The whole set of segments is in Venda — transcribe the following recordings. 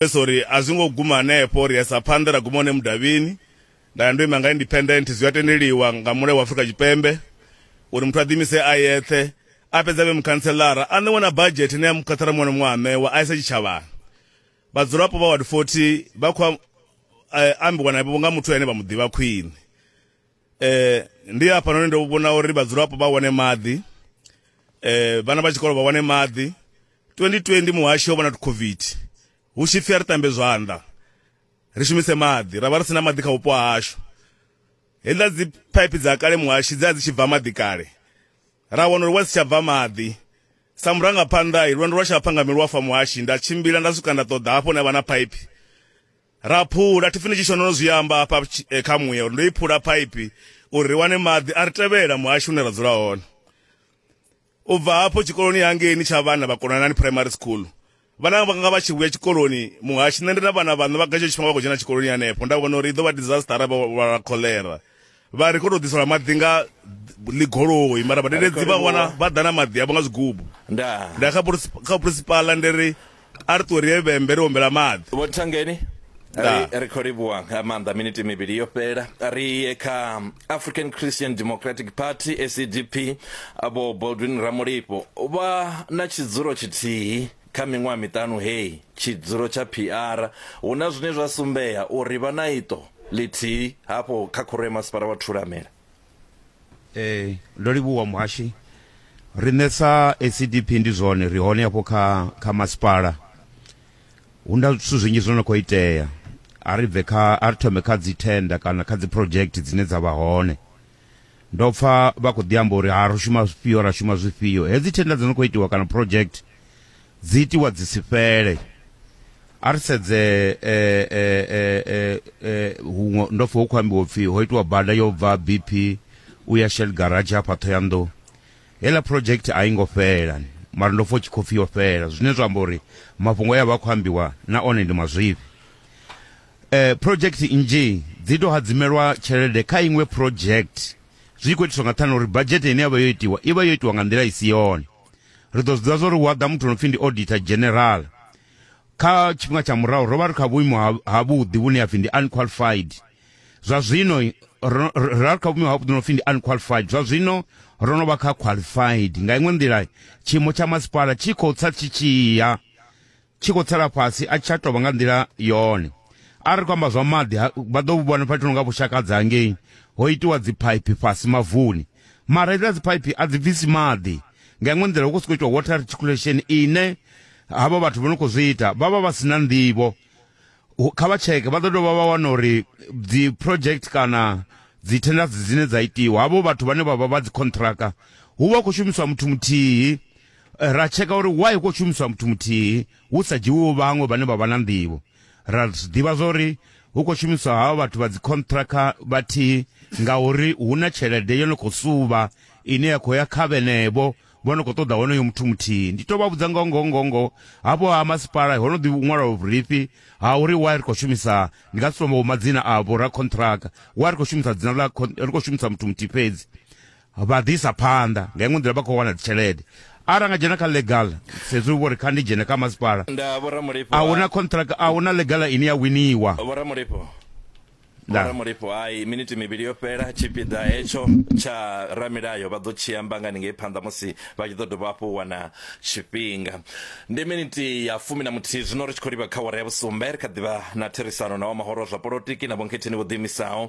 pesa uri a zwi ngo guma hanefho ri yesa phanḓa ra guma hone mudavhini nda ya ndo ima nga independent zwi a tendeliwa nga mulayo wa afurika tshipembe uri muthu a ḓimise a yeṱhe a fhedza vhe mukhantselara a ṋewe na badzhete ine ya mukhathara muṅwe na muṅwe a ṋewa a isa tshitshavhani vhadzulapo vha ward 40 vha khou eh, ambiwa navho nga muthu ane vha mu ḓivha khwine eh ndi hafha noni ndo vhona uri vhadzulapo vha wane maḓi eh vhana vha tshikolo vha wane maḓi 2020 muhashi yo vhona tu covid hu tshi pfi a ri tambe zwanḓa ri shumise maḓi ra vha ri sina maḓi kha vhupo hashu hedzila dzi pipe dza kale muhashi dza dzi tshi bva maḓi kale ra wana uri wa si tsha bva maḓi sa murangaphanḓa i lwendo lwa tshapha nga milwafa muhashi nda tshimbila nda swika nda ṱoḓa hafho na vha na pipe Ra phula, thi pfi ni tshi shona no zwi amba hafha eh, kha muya uri ndo i phula phaipi uri ri wane maḓi a ri tevhela muhasho une ra dzula hone u bva hafho tshikoloni hangeini tsha vhana vha konanani primary school vhana vhanga vha tshi vhuya tshikoloni muhashi nṋe ndi na vhana vhaṋe vha gatsho tshifhinga vha khou dzhena tshikoloni hanefho nda vhona uri i ḓo vha disaster arali vha lwala kholera vha ri kho to ḓiselwa maḓi nga ḽigoloi mara vhadededzi vha wana vha ḓa na maḓi avho nga zwigubu nda nda kha kha principala ndi ri a ri ṱuwe ri ye vhembe ri ombela maḓi vho thangeni ri khou livhuwa nga maanḓa miniti mivhili yo fhela ri ye kha african christian democratic party acdp vho baldwin ramulifho vha na tshidzulo tshithihi Kha miṅwaha miṱanu heyi, tshidzulo tsha PR hu na zwine zwa sumbea uri vha na iṱo ḽithihi hafho kha Khoro ya Masipala wa Thulamela. Ee, ndo livhuwa muhashi. Riṋe sa ACDP ndi zwone ri hone hafho kha kha masipala. Hu na zwithu zwinzhi zwo no khou itea. A ri bve kha a ri thome kha dzi thenda kana kha dzi project dzine dza vha hone. ndo pfa vha khou ḓi amba uri ha ri shuma zwifhio ra shuma zwifhio hedzi thenda dzi no khou itiwa kana project dzi itiwa dzi si fhele a ri sedze eh, eh, eh, huṅwe ndo pfa hu khou ambiwa upfhi ho itiwa bada yo bva bp u ya shell garage hafha thoyandou heiḽa project a i ngo fhela mara ndo pfa u tshi khou pfi yo fhela zwine zwa amba uri mafhungo e a vha khou ambiwa na one ndi mazwifhi Eh, project nnzhi dzi tou hadzimelwa tshelede kha iṅwe project zwi khou itiswa nga ṱhani uri badzhete ine ya vha yo itiwa i vha yo itiwa nga nḓila i si yone ri ḓo zwiḓivha zwa uri hu a ḓa muthu no pfhi ndi auditor general kha tshifhinga tsha murahu ro vha ri kha vhuimo ha- ha vhuḓi vhune ya pfhi ndi unqualified zwa zwino ro ro- ro vha ri kha vhuimo ha vhuḓi no pfhi ndi unqualified zwa zwino ro no vha kha qualified nga iṅwe nḓila tshiimo tsha masipala tshi khou tsa tshi tshiya tshi khou tsela fhasi a tsha tovha nga nḓila yone a ri kwamba zwa maḓi vha ḓo vhu vhona fhethu nga vhushakadza hangei ho itiwa dziphaiphi fhasi mavuni mara iḽa dziphaiphi a dzi bvisi maḓi nga iṅwe nḓila hu khou sokou itiwa water reticulation ine havha vhathu vho no khou zwi ita vha vha vha si na nḓivho kha vha tsheke vha ḓo dovha vha wana uri dzi project kana dzi tenders dzine dza itiwa havho vhathu vhane vha vha vha dzi contractor hu vha hu khou shumiswa muthu muthihi Eh, ra tsheka uri why ko shumiswa muthu muthihi hu sa dzhiwiwo vhaṅwe vhane vha vha na nḓivho ra ḓivha zwa uri hu khou shumiswa havho vhathu vha dzikhonṱhrakha vhathihi ngauri hu na tshelede yo no khou suvha ine ya khou ya kha vhenevho vho no khou ṱoḓa honoyo muthu muthihi ndi tou vha vhudza ngoho ngoho ngoho ngoho hafho ha masipala ho no ḓi ṅwalwa vhurifhi ha uri wa ri khou shumisa ndi nga si tombo madzina avho ra khonṱhrakha wa ri khou shumisa dzina ḽa ri khou shumisa muthu muthihi fhedzi vha ḓisa phanḓa nga iṅwe nḓila vha khou wana dzitshelede arali anga dzhena kha legal sezwi vho ri kha ndi dzhene kha masipala a hu na contract a hu na legal ine ya winiwa vhoramulifho hai miniti mivhili yo fhela tshipiḓa hetsho tsha ramilayo vha ḓo tshi amba nga ningei phanḓa musi vha tshi ḓo dovha hafhu wana tshifhinga ndi miniti ya fumi na muthihi zwino ri tshi khou livha kha wara ya vhusumbe ri kha ḓivha na therisano na wa mahoro zwa polotiki na vhonketheni vho ḓiimisaho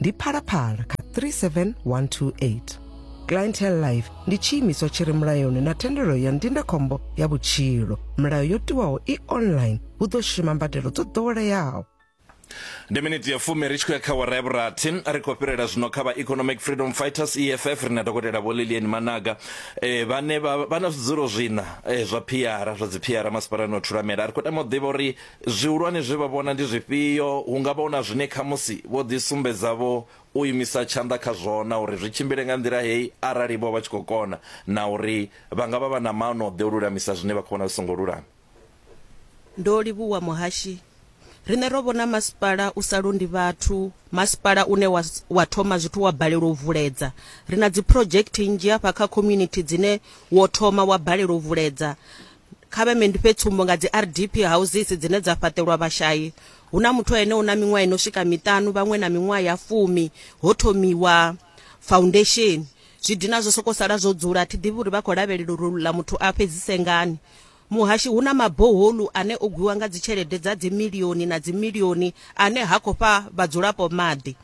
ndi phalaphala kha 37128 clientele life ndi tshiimiswa tshi re mulayoni na thendelo ya ndindakhombo ya vhutshilo milayo yo tiwaho i online hu ḓo shuma mbadelo dzo ḓoweleaho ndi miniti ya fumi ri tshi khou ya kha wara ya vhurathi ri khou fhirela zwino kha vha economic freedom fighters eff ri na dokotela vho lilian managa eh, vhane vha vha na zwidzulo zwina eh, zwa phiara zwa dzi phiara masipalani o thulamela ri khou tama u ḓivha uri Zwihulwane zwe vha vhona ndi zwifhio? Hu nga vha hu na zwine khamusi vho ḓisumbedza-vho u imisa tshanḓa kha zwona uri zwi tshimbile nga nḓila hei arali-vho vha tshi khou kona, na uri vha nga vha vha na maano o ḓe u lulamisa zwine vha khou vhona zwi songo lulama. Ndo livhuwa muhashi. Riṋe ro vhona masipala u sa londi vhathu, masipala une wa wa thoma zwithu wa balelwa u vuledza. Ri na dziphurodzhekthe nnzhi hafha kha community dzine wo thoma wa balelwa u vuledza. kha vhe ndi fhe tsumbo nga dzi rdp houses dzine dza fhaṱelwa vhashayi hu na muthu ene u na miṅwaha ino swika miṱanu vhaṅwe na miṅwaha ya fumi ho thomiwa foundation zwi dina zwo soko sala zwo dzula thi ḓivhi uri vha khou lavhelela uri ḽa muthu a fhedzise ngani muhashi hu na maboholu ane o gwiwa nga dzitshelede dza dzimilioni na dzimilioni ane ha khou fha vhadzulapo maḓi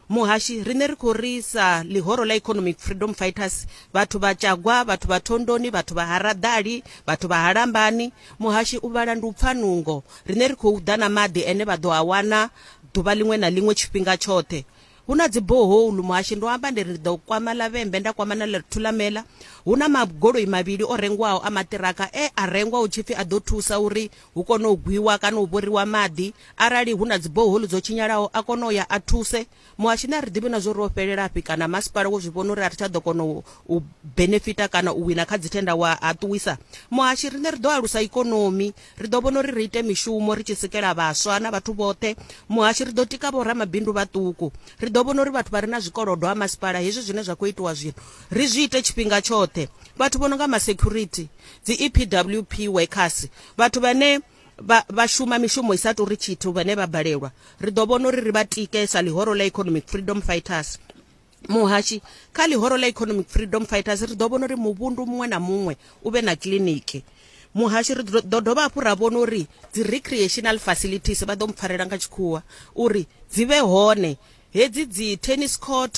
Muhashi, Riṋe ri khou ri sa ḽihoro ḽa Economic Freedom Fighters, vhathu vha Tshagwa, vhathu vha Thondoni, vhathu vha ha Raḓali, vhathu vha ha Lambani, Muhashi u vhala ndi u pfa nungo. Riṋe ri khou ḓa na maḓi ene vha ḓo a wana ḓuvha ḽiṅwe na ḽiṅwe tshifhinga tshoṱhe. Hu na dzi borehole, Muhashi, ndo amba ndi ri ndi ḓo kwama ḽa Vhembe nda kwama na ḽa Thulamela. Hu na magoloi mavhili o rengwaho a maṱiraka e a rengwa hu tshi pfi a ḓo thusa uri hu kone u gwiwa kana u vhoriwa maḓi, arali hu na dziboholi dzo tshinyalaho a kone u ya a thuse. Muhasho ni a ri ḓivhi na zwori o fhelelafhi kana masipala wo zwi vhona uri a ri tsha ḓo kona u benefita kana u wina kha dzithenda wa a ṱuwisa. Muhashi riṋe ri ḓo alusa ikonomi, ri ḓo vhona uri ri ite mishumo ri tshi sikela vhaswa na vhathu vhoṱhe. Muhashi ri ḓo tika vho ramabindu vhaṱuku, ri ḓo vhona uri vhathu vha re na zwikolodo ha masipala hezwi zwine zwa khou itiwa zwino ri zwi ite tshifhinga tshoṱhe. Vhathu vho no nga ma security, dzi EPWP workers vhathu vhane vha vha shuma mishumo i sa tori tshithu vhane vha balelwa ri ḓo vhona uri ri vha tike sa ḽihoro ḽa economic freedom fighters muhashi kha ḽihoro ḽa economic freedom fighters ri ḓo vhona uri muvhundu muṅwe na muṅwe u vhe na kiliniki muhasho ri ḓo dovha hafhu ra vhona uri dzi recreational facilities vha ḓo mpfarela nga tshikhuwa uri dzi vhe hone hedzi dzi tennis court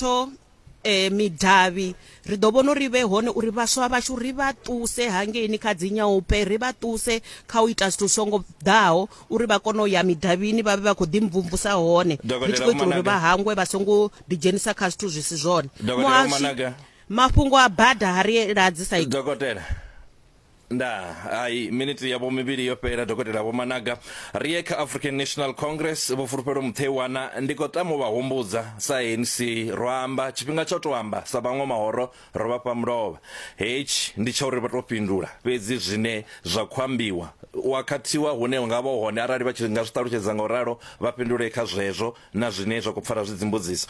eh midavhi ri ḓo vhona uri vhe hone uri vhaswa vhashu ri vha ṱuse hangeini kha dzi nyaupe ri vha ṱuse kha u ita zwithu songo ḓaho uri vha kone u ya midavhini vha vhe vha khou ḓi mvumvusa hone ri tshi khou itela uri vha hangwe vha songo ḓi dzhenisa kha zwithu zwi si zwone muhasho mafhungo a bada ha ri ladzi sa dokotela ndaa hai miniti yavho mivhili yo fhela dokotela vho managa ri ye kha african national congress vho fulufhelo mutheiwana ndi khou tama u vha humbudza sa anc ro amba tshifhinga tsho to amba sa vhaṅwe mahoro ro vha fha mulovha hetshi ndi tsha uri vha to fhindula fhedzi zwine zwa khou ambiwa wa khathiwa hune nga vha hone arali vha tshi nga zwi ṱalutshedza nga u ralo vha fhindule kha zwezwo na zwine zwa khou pfala zwi dzimbudziso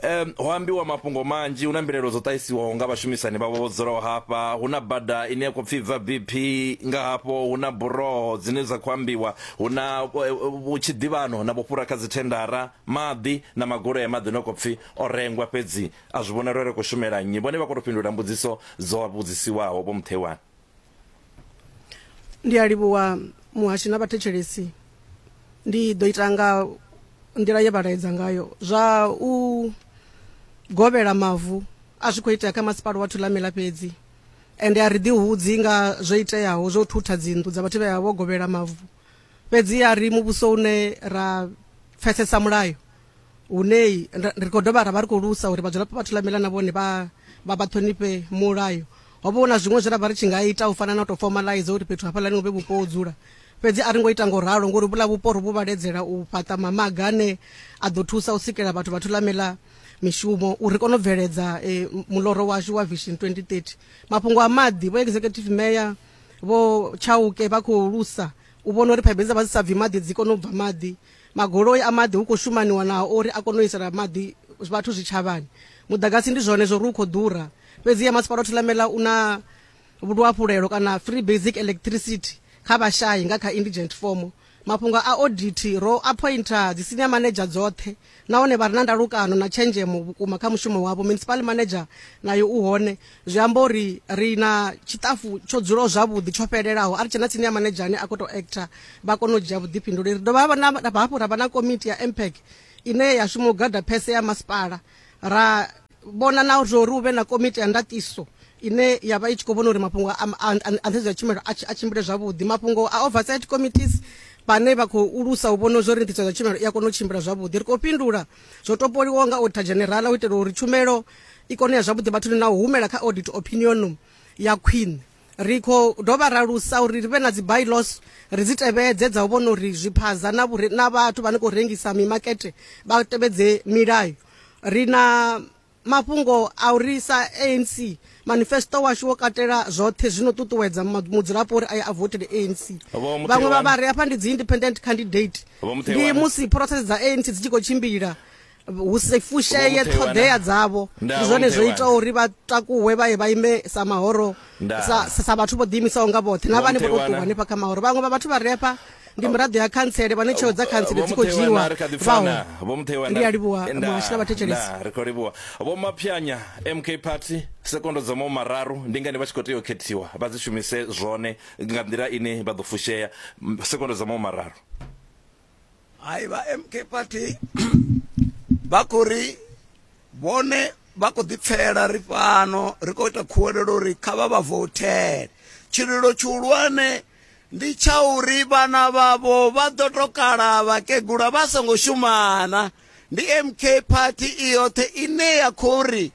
um ho ambiwa mafhungo manzhi hu na mbilaelo dzo ṱahisiwaho nga vhashumisani vhavho vho dzulaho hafha hu na bada ine ya khou pfhi bva bp nga hafho hu na buroho dzine dza khou ambiwa hu na vhutshidivhano na vhofhura kha dzithendara maḓi na magoloi a maḓi no khou pfhi o rengwa fhedzi a zwi vhonala uri khou shumela nnyi vhone vha khou tou fhindula mbudziso dzo vhudzisiwaho vho mutheiwani ndi a livhuwa muhashi na vhathetshelesi ndi ḓo ita nga nḓila ye vha laedza ngayo zwa u govhela mavu a zwi khou itea kha masipala wa thulamela fhedzi ende a ri ḓihudzi nga zwo iteaho zwo thutha dzinnḓu dza vhathu vhe vha vho govhela mavu fhedzi a ri muvhuso une ra pfesesa mulayo hune ri khou dovha ra vha ri khou lusa uri vhadzulapo vha thulamela na vhone vha vha vha ṱhonifhe mulayo ho vha hu na zwiṅwe zwe ra vha ri tshi nga ita u fana na u tou fomalaiza uri fhethu hafhaḽani hu vhe vhupo ho dzula fhedzi a ri ngo ita ngo ralo ngori vhula vhupo ri vhu vhaledzela u fhaṱa mamaga ane a ḓo thusa u sikela vhathu vha thulamela mishumo uri ri kone u bveledza eh, muloro washu wa vision 2030 mafhungo a maḓi vho executive mayor vho chauke vha khou lusa u vhona uri phaipeni dza vha dzi sa bvi maḓi dzi kone u bva maḓi Magoloi a maḓi hu khou shumaniwa nao uri a kone u isela maḓi vhathu zwitshavhani. Muḓagasi ndi zwone zwo ri u khou ḓura, fhedziha Masipala wa Thulamela u na luhafhulelo kana free basic electricity kha vhashai nga kha indigent form. Mafhungo a audit ro appointer dzi senior manager dzoṱhe nahone vha re na ndalukano na tshenzhemo vhukuma kha mushumo wavho. Municipal manager nayo u hone zwi amba uri ri na tshiṱafu tsho dzulaho zwavhuḓi tsho fhelelaho a ri tshena tsini ya manedzha ane a khou tou actor vha kone u dzhia vhuḓifhinduleli ri dovha hafhu ra vha na komiti ya mpeg ine ya shuma u gada phese ya masipala ra vhona na zwo uri hu vhe na komiti ya ndatiso ine ya vha i tshi khou vhona uri mafhungo a nḓhedzo ya tshumelo a tshimbile zwavhuḓi mafhungo a oversight committees vhane vha khou ulusa u vhona zwori nḓisedzo tshumelo i a kona u tshimbila zwavhuḓi ri khou fhindula zwo topoliwaho nga auditor general u itela uri tshumelo i kone ya zwavhuḓi vhathuni na u humela kha audit opinionum ya khwine ri khou dovha ra lusa uri ri vhe na dzi bylaws ri dzi tevhedze dza u vhona uri zwiphaza na vhure na vhathu vhane khou rengisa mimakete vha tevhedze milayo ri na mafhungo a uri sa ANC manifesto washu wo katela zwoṱhe zwino ṱuṱuwedza mudzulapo uri aye a votele ANC vhaṅwe vha vhari hafha ndi dzi independent candidate ndi musi process dza ANC dzi tshi khou tshimbila hu si fusheye ṱhoḓea dzavho ndi zwone zwo itaho uri vha takuwe vha ye vha ime sa mahoro sa vhathu vho ḓiimisaho nga vhoṱhe na vhane vho tou ṱuwa hanefha kha mahoro vhaṅwe vha vhathu vha re hafha ndi miraḓo ya khantsele vhane tsheo dza khantsele dzi khou dzhiiwa ndi a livhuwa muhashi na vhathetshelesi ri khou livhuwa vho maphyanya mk party sekondo dza mawu mararu ndi ngani vha tshi khou tea u khethiwa vha dzi shumise zwone nga nḓila ine vha ḓo fushea sekondo dza mawu mararu hai vha mk party vha khou ri vhone vha khou ḓipfela ri fhano ri khou ita khuwelelo uri kha vha vha voutele tshililo tshihulwane ndi tsha uri vhana vhavho vha ḓo tokala vhakegula vha songo shumana ndi mk party i yoṱhe ine ya khou ri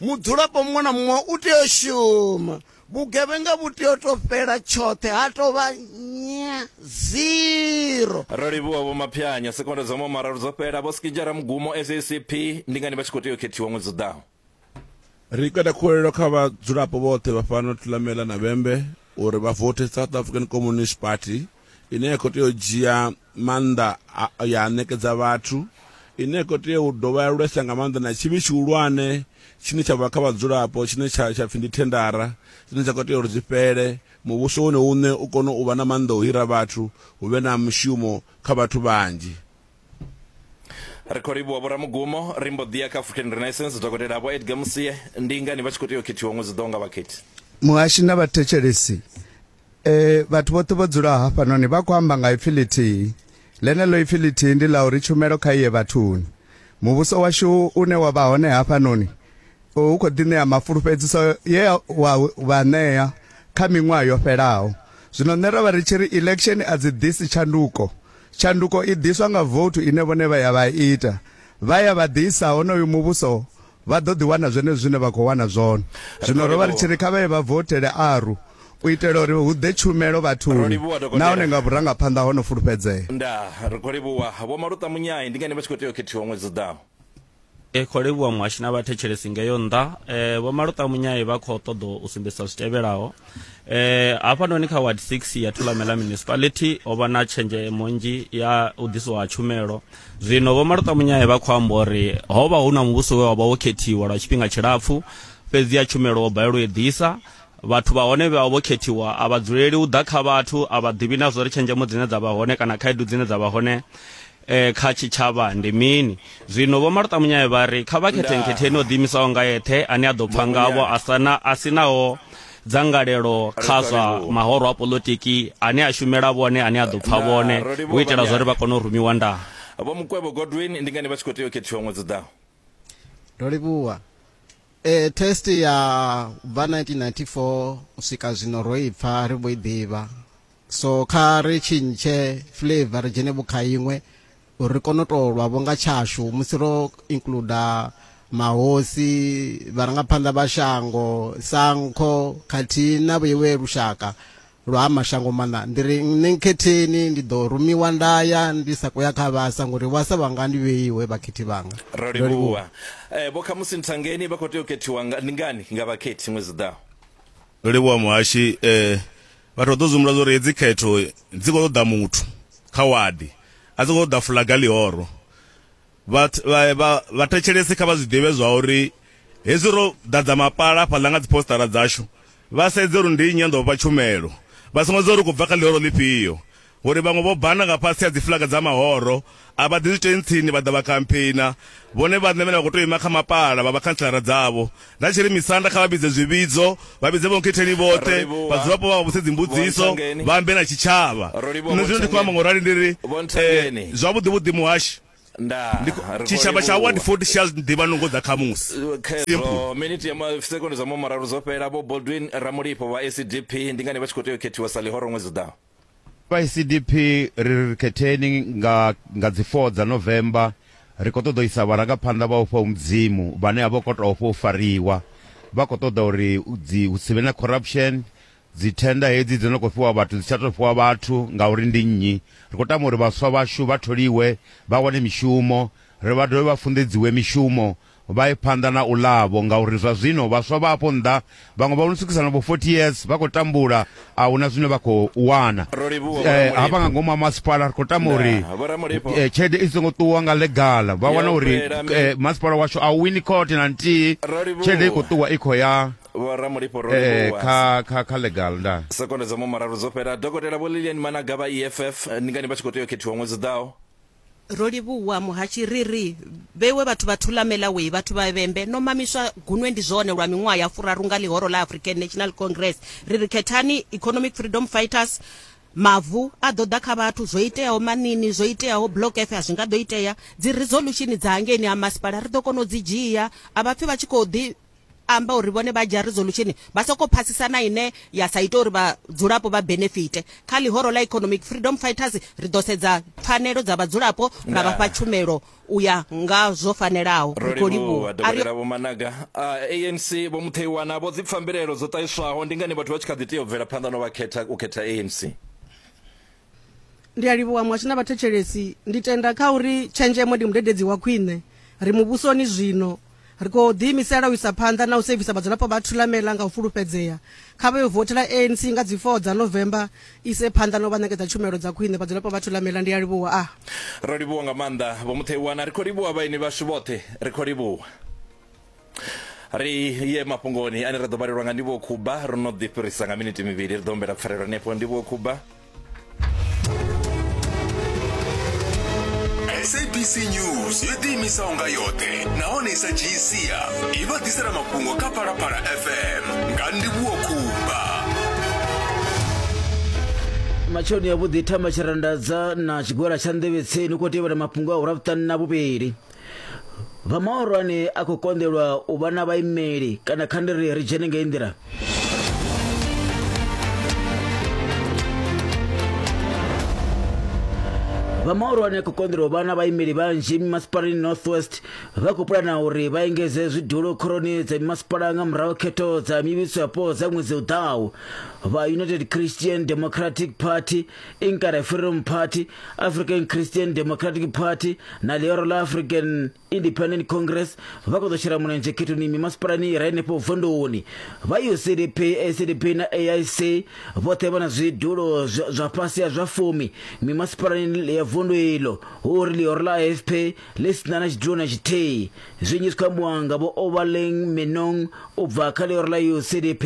mudzulapo muṅwe na muṅwe u tea u shuma Vhugevhenga vhu tea u tou fhela tshoṱhe, ha tou vha nya, zero. Rolivhuwa Vho Maphianya, Sekondo dza Mahume Mararu dzo fhela, Vho Skijara Mugumo, SACP, Ndi ngani vha tshi khou tea u khethiwa ṅwedzi u ḓaho? Ri kanda khuwelelo kha vhadzulapo vhoṱhe vha fhano Thulamela na Vhembe uri vha vothe South African Communist Party. ine ya khou tea u dzhia maanḓa ya ṋekedza vhathu ine ya khou tea u dovha ya lwesa nga maanḓa na tshivhi tshihulwane tshine tsha vha kha vhadzulapo tshine tsha tsha pfhi ndi thendara dzine dza khou tea uri dzi fhele muvhuso wone uṋe u kone u vha na maanḓa u hira vhathu hu vhe na mushumo kha vhathu vhanzhi ri khou livhuwa vhoramugumo ri mbo ḓiya kha african renaissance dokotela vho edgar musie ndi ngani vha tshi khou tea u khethiwa ṅwedzi ḓoho nga vhakhethi muhashi na vhathetshelesi E, vhathu vhoṱhe vho dzulaho hafhanoni vha khou amba nga ipfi ḽithihi. Ḽeneḽo ipfi ḽithihi ndi ḽa uri tshumelo kha iye vhathuni. Muvhuso washu une wa vha hone hafhanoni u khou ḓi ṋea mafulufhedziso ye wa vha ṋea kha miṅwaha yo fhelaho. Zwino nṋe ro vha ri tshi ri election a dzi ḓisi tshanduko. Tshanduko i ḓiswa nga vouthu ine vhone vha ya vha ita. Vha ya vha ḓisa honoyu muvhuso Vha ḓo ḓi wana zwenezwo zwine vha khou wana zwone. Zwino ro vha ri tshi ri kha vha ye vha vothele ARU u itela uri hu ḓe tshumelo vhathuni nahone nga vhurangaphanḓa ho no fulufhedzea. Ndaa, ri khou livhuwa. Vho Maluṱa Munyai, ndi ngani vha tshi khou tea u khethiwa ṅwedzi u ḓaho? Ri khou livhuwa muhashi na vhathetshelesi ngeyo nnḓa. Vho Maluṱa Munyai vha khou ṱoḓa u sumbedzisa zwi tevhelaho. Hafhanoni kha Ward 6 ya Thulamela Municipality ho vha na tshenzhemo nnzhi ya u ḓisiwa ha tshumelo. Zwino Vho Martha Munyae vha khou amba uri ho vha hu na muvhuso we wa vha wo khethiwa lwa tshifhinga tshilapfu, fhedzi ya tshumelo wo balelwa u i ḓisa. Vhathu vha hone vhe vha vho khethiwa a vha dzuleli u ḓa kha vhathu, a vha ḓivhi na zwa uri tshenzhemo dzine dza vha hone kana khaedu dzine dza vha hone kha tshitshavha ndi mini. Zwino Vho Martha Munyae vha ri kha vha khethe nkhetheni o ḓiimisaho nga eṱhe ane a ḓo pfa ngavho a si naho dzangalelo kha zwa mahoro a polotiki ane a shumela vhone ane a ḓo pfa vhone u itela zwa uri vha kone u rumiwa ndaa vho mukwevho godwin ndi ngani vha tshi khou tea u khethiwa ṅwedzi ḓaho ndo livhuwa e test ya bva 1994 u swika zwino ro i pfa ri vho i ḓivha so kha ri tshintshe flavor ri dzhene vhukha iṅwe uri ri kone u tou lwa vho nga tshashu musi ro includer mahosi vharangaphanḓa vha shango sankho khathihi na vhuiwe lushaka lwa ha mashango maṋa ndi ri nṋe nkhetheni ndi ḓo rumiwa nda ya ndi sa khou ya kha vhasa ngori vhasa vhanga ndi vheiwe vhakhethi vhanga ro livhuwa eh, vho khamusi nthangeni vha khou tea u khethiwa nga, ndi ngani nga vhakhethi ṅwedzi ḓaho ro livhuwa muhashi eh, Vhathu vha ḓo dzumbula zwa uri hedzi khetho dzi khou ṱoḓa muthu kha wadi, a dzi khou ṱoḓa fulaga ḽihoro. Vhathetshelesi kha vha zwi ḓivhe zwa uri hezwi ro ḓadza mapala hafhaḽa nga dziphositara dzashu, vha sedze uri ndi nnyi a ḓo vha fha tshumelo. Vha songo sedza uri u khou bva kha ḽihoro ḽifhio, Vho ri vhaṅwe vho bana nga fhasi ha dzifuḽaga dza mahoro, a vha ḓi zwitentsini vha ḓa vha khampheina. Vhone vhaṋe vhane vha khou tou ima kha mapala vha vha khantselara dzavho. Nda tshi ri misanda kha vha vhidze zwivhidzo, vha vhidze vhonkhetheni vhoṱhe, vhadzulapo vha vha vhudze dzimbudziso, vha ambe na tshitshavha. Nṋe zwino ndi khou amba nga u rali ndi ri, Eh, zwavhuḓi-vhuḓi muhashi, ndi khou- tshitshavha tsha Ward 40 tshi a zwi ḓivha nungo dza khamusi. Simple. Miniti ya ma- sekondi zwa mahumararu dzo fhela. Vho Baldwin Ramulipho vha SDP ndi ngani vha tshi khou tea u khethiwa sa ḽihoro ṅwedzi u ḓaho? Vha ECDP ri ri ri khetheni nga nga dzi 4 dza November ri khou ṱoḓa u isa vharangaphanḓa vha ufha hu Mudzimu vhane a vho khou tou ofha u fariwa. Vha khou ṱoḓa uri dzi hu si vhe na corruption, dzi thenda hedzi dzo no khou fhiwa vhathu dzi tsha tou fhiwa vhathu ngauri ndi nnyi. Ri khou tama uri vhaswa vhashu vha tholiwe vha wane mishumo, ri vha dovhe vha funḓedziwe mishumo Vha ye phanḓa na u ḽa-vho, ngauri zwa zwino vhaswa vha afho nnḓa vhaṅwe vha no swikisa na vho 40 years vha khou tambula, a hu na zwine vha khou wana. Ro livhuwa Vho Ramulipho. Hafha nga ngomu ha masipala ri khou tama Ndaa, uri Vho Ramulipho. eh, tshelede i songo ṱuwa nga ḽegala, vha Yo wana uri fhela mi- eh, masipala washu a u wini khothe na nthihi, Ro livhuwa. tshelede i khou ṱuwa i khou ya Vho Ramulipho ro eh, livhuwa. kha kha kha ḽegala. Ndaa. Sekondo dza mumararu dzo fhela. Dokotela Vho Lilian Managa vha EFF ndi ngani vha tshi khou tea u khethiwa ṅwedzi u ḓaho? Rolivhuwa Muhatshi ri ri vhewe vhathu vha Thulamela way vhathu vha vhembe no mamiswa gunwe ndi zwone lwa miṅwaha ya furaru nga ḽihoro ḽa African National Congress ri ri khethani economic freedom fighters mavu a ḓo ḓa kha vhathu zwo iteaho manini zwo iteaho block f a zwi nga ḓo itea dzi resolution dza hangeini ha masipala ri ḓo kona u dzi dzhia a vhapfi vha tshi khou ḓi amba uri vhone vha dzhia resolution vha soko phasisa na ine ya sa ita uri vhadzulapo vha benefite kha ḽihoro ḽa economic freedom fighters ri ḓo sedza pfanelo dza vhadzulapo ra vhafha tshumelo u ya nga zwo fanelaho ri khou livhuwa dokotela vho managa anc vho mutheiwana vho dzi pfambilelo dzo ṱahiswaho ndi ngani vhathu vha tshi kha ḓi tea u bvela phanḓa no vha khetha u khetha anc ndi a livhuwa muhasho na vhathetshelesi ndi tenda kha uri tshenzhemo ndi mudededzi wa khwine ri muvhusoni zwino ri khou ḓiimisela u isa phanḓa na u sevisa vhadzulapo vha thulamela nga u fulufhedzea kha vha yo vothela anc nga dzi 4 dza novemba ise phanḓa na u vha ṋekedza tshumelo dza khwine vhadzulapo vha thulamela ndi a livhuwa a ro livhuwa nga maanḓa vho mutheiwana ri khou livhuwa vhaeni vhashu vhoṱhe ri khou livhuwa ri ye mafhungoni ane ra ḓo vhalelwa nga ndivho khuba ro no ḓi fhirisa nga miniti mivhili ri ḓo humbela pfarelo hanefho ndivho khuba sabc news yo ḓiimisaho nga yoṱhe nahone i sa dzhii sia i vha ḓisela mafhungo kha phalaphala fm nga ndivhuwo khumba matsheloni avhuḓi thama tshirandadza na tshigwela tsha nḓevhetseni u khou tevhela mafhungo a ura vhuṱanu na vhuvhili vha mahorwane a khou konḓelwa u vha na vhaimeli kana kha ndi ri ri dzhene ngei nḓila vha mahorwane a khou konḓelwa u vha na vhaimeli vhanzhi mimasipalani northwest vha khou pulana uri vha engedze zwidulo khoroni dza mimasipala nga murahu khetho dza mivhiso yapo dza ṅwedzi u ḓaho vha united christian democratic party inkare freedom party african christian democratic party na leoro la african independent congress vha khou ḓo shela mulenzhe khethoni mimasipalani i re henefho vunduni vha ucdp acdp na aic vhoṱhe vha na zwidulo zwa zwa fhasi ha zwa fumi mimasipalani ya vundu ilo hu uri leoro la afp ḽi si na na tshidulo na tshithihi zwinzhi zwi khou ambiwa nga vho overling menong u bva kha leoro la ucdp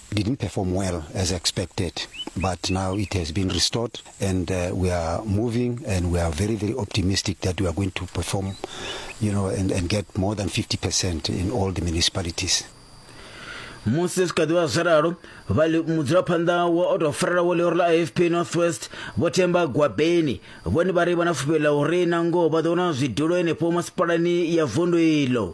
didn't perform well as expected, but now it has been restored and uh, we are moving and we are very, very optimistic that we are going to perform, you know, and, and get more than 50% in all the municipalities. musi zwi kha ḓivha zwi ralo mudzulaphanḓa wa o tou farela wo ḽiori ḽa afp northwest vho themba gwabeni vhone vha ri vha na fhufhelo ḽa uri na ngoho vha ḓo wana zwidulo henefho masipalani ya vundu iḽo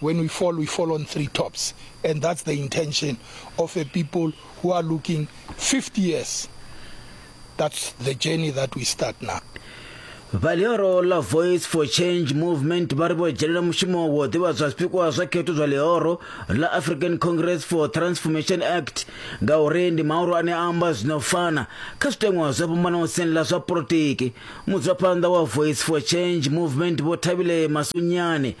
when we fall, we fall on three tops. And that's the intention of a people who are looking 50 years. That's the journey that we start now. vhalioro la voice for change movement vha ri vho dzhenela mushumo wo ḓivha zwa zwipikwa zwa khetho zwa ḽihoro la african congress for transformation act ngauri ndi maoro ane a amba zwino fana kha zwiteṅwa zwo fhambanaho siani ḽa zwa polotiki mudzulaphanḓa wa voice for change movement vho thabile masunyane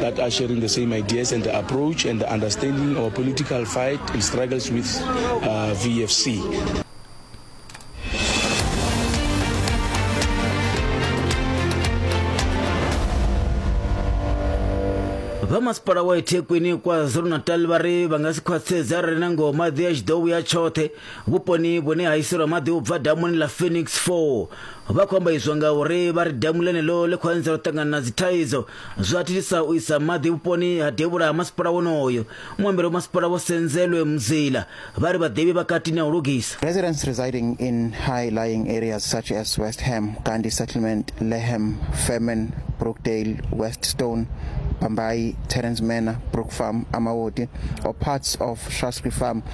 that are sharing the same ideas and the approach and the understanding our political fight and struggles with uh, VFC. vhamasipala wa ithekwini kwa zulu-natal vha ri vha nga si khwaṱhisedze arali na ngoho maḓi a tshi ḓo vhuya tshoṱhe Vhuponi vhune ha iselwa maḓi u bva damuni ḽa Phoenix 4 vha khou amba izwo nga uri vha ri damu ḽenelo ḽi khou anzela u ṱangana na dzithaidzo zwa thithisa u isa maḓi vhuponi ha devhula ha masipala wonoyo. Muambeli wa masipala Vho Senzelwe Mzila vha ri vhaḓivhi vha katini ha u lugisa. Residents residing in high-lying areas such as West Ham, Gandhi Settlement, Leham, Fairman, Brookdale, West Stone, Bhambayi, Terence Manor, Brook Farm, Amawoti, or parts of Shaftesbury Farm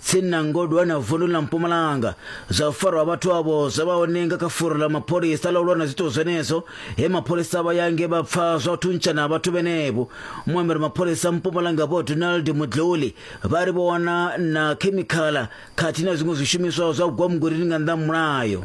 tsini na Ngodwana vundu ḽa Mpumalanga. Zwa u farwa ha vhathu avho zwo vha hone nga kha furo ḽa mapholisa ḽa u lwa na zwiito zwenezwo he mapholisa vha ya nge vha pfa zwa u thuntshana ha vhathu vhenevho. Muambeli mapholisa Mpumalanga Vho Donald Mudluli vha ri vho wana na khemikhala khathihi na zwiṅwe zwishumiswa zwa gwamugwilini nga nnḓa ha mulayo.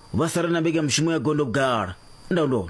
vha sala na mbekanyamushumo ya gondo vhugala ndaulo